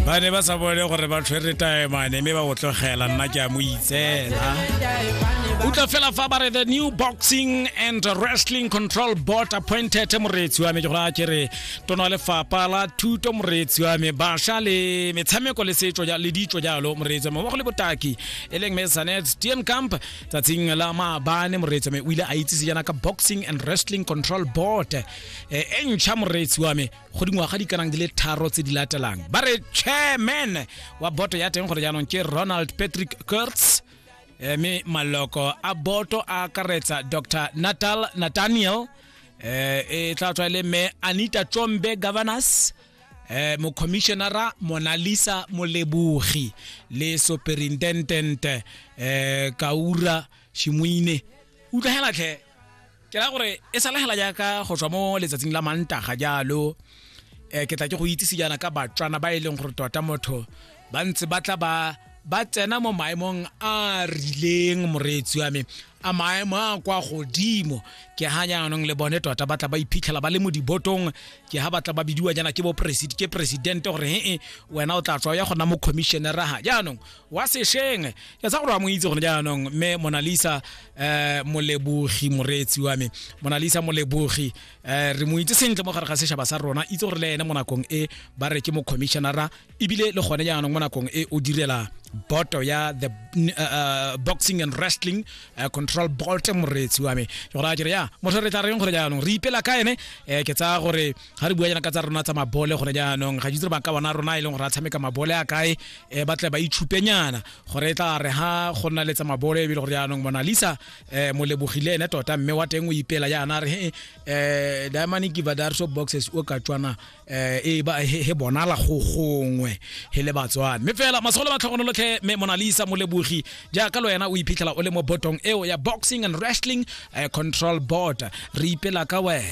ba ne ba sa bone gore ba tshwere taemane mme ba o tlogela nna ke a mo itsela utlwa fela fa ba re the new boxing and wrestling control board appointed moreetsi wa me ke gore a kere tono wa lefapa la thuto moreetsi wa me basha le metshameko le setso ja- le ditso jalo moreetsi wa me mmogo le botaki e leng me sanet tm camp tsatsing la maabane moreetsi wa me o ile a itsise jaana ka boxing and wrestling control board e e ntšha moreetsi wa me go dingwaga di kanang di le tharo tse di latelang ba re chairman wa boto ya teng gore jaanong ke ronald patrick kurtz eh, mme maloko a boto a akaretsa dr natal nathaniel eh, e tla tswa e le mme anita tsombe governors eh, mocommissionara monalisa molebogi le superintendent eh, kaura shimoine utlwa hela tlhe ke ra gore e sala hela jaaka go tswa mo letsatsing la mantaga jalo um ke tla ke go itsise jaana ka batswana ba e leng gore tota motho ba ntse ba tla ba ba tsena mo maemong a rileng moreetsi wa me a maemo a kwa godimo ke ha jaanong le bone tota ba tla ba iphitlhela ba le mo dibotong ke ha ba tla ba bidiwa jaana ke bo ke presidente gore he wena o tla tswa ya gona mo commissioneraga jaanong wa sešeng ke tsa gore wa mo itse gone jaanong mme monalisa um molebogi moreetsi wa me monalisa molebogi um re mo itse sentle mo gare ga sešaba sa rona itse gore le ene mo nakong e ba re ke mo commissionera ebile le gone jaanong mo nakong e o direla boto ya the uh, boxing and wrestling uh, control bolt moreetsi wa me ke gore a kere ya motho re tla reng gore jaanong re ipela ka ene um ke tsaya gore ga re bua jaana ka tsa rona tsa mabole gone jaanong ga jitse ba ka bona rona e leng gore a tshameka mabole a kae um ba tle ba itshupenyana gore e tla re ha go nna le tsa mabole ebile gore jaanong monalisa um molebogile ene tota mme wa teng o ipela jaana re um eh, diamani kiva darso boxes o ka tswana um e ba he bonala go gongwe he le batswana mme fela masogolo ba tlhogonolotlhe mme monalisa molebogi jaaka le wena o iphitlhela o le mo botong eo ya boxing and wrestling control board re ipela ka wena